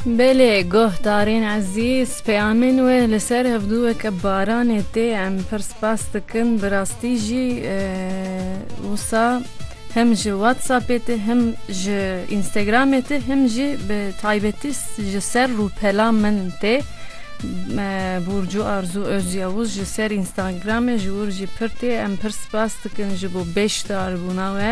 Belê goh Tarîn Ezîz peyamên wê li ser ev du weke baranê tê em pir spas dikin bi rastî jî wisa him ji whatsappê tê him ji înstagramê tê him jî bi taybetî ji ser rûpela min tê Burcu Arzu Özyavuz ji ser înstagramê ji wir jî pir tê em pir spas dikin ji bo bêşdarbûna we.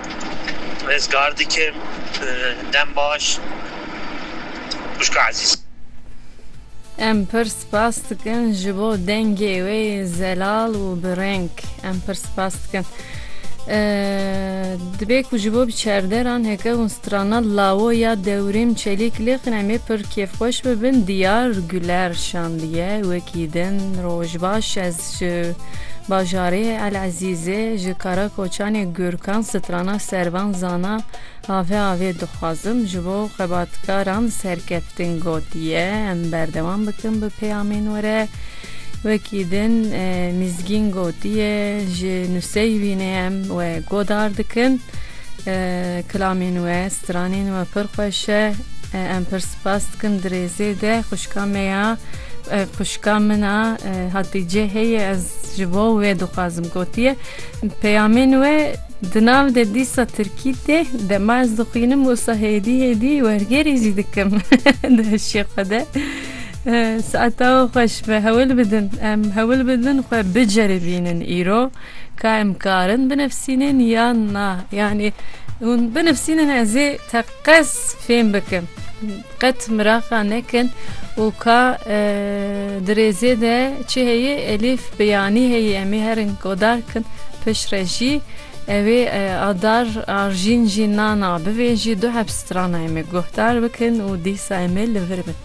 Rizgar dikim dem baş xwişka ezîz. Em pir spas dikin ji bo dengê wê zelal û bi reng. Em pir spas dikin. Dibê ku ji bo biçerderan heke hûn strana lawo ya dewrîm çelîk lêqin em ê pir kêfxweş bibin. Diyar Guler şandiye wekî din roj baş ez. Ji bajarê El Ezîzê ji Karakoçanê Gurkan strana Servan Zana avê avê dixwazim ji bo xebatkaran serkeftin gotiye em berdewam bikin bi peyamên we re. Wekî din Mîzgîn gotiye ji nuseyî wî ne em we godar dikin. Kilamên we, stranên we pir xweş e. Em pir spas dikin di rêzê de xwişka me ya. Xwişka min a Hatîce heye ez ji bo wê dixwazim gotiye peyamên we di nav de dîsa tirkî tê dema ez dixwînim wisa hêdî hêdî wergerî jî dikim di hişê xwe de saeta we xweş be hewil bidin em hewil bidin xwe biceribînin îro ka em karin binivîsînin yan na yanî hûn binivîsînin ez ê Qez fêm bikin. Qet miraqa nekin û ka di rêzê de çi heye elîf bi yanî heye em ê herin godar kin pişt re jî ew ê adar arjîn jî nana bivê jî du hepstrana em ê guhdar bikin û dîsa em ê li vir bin.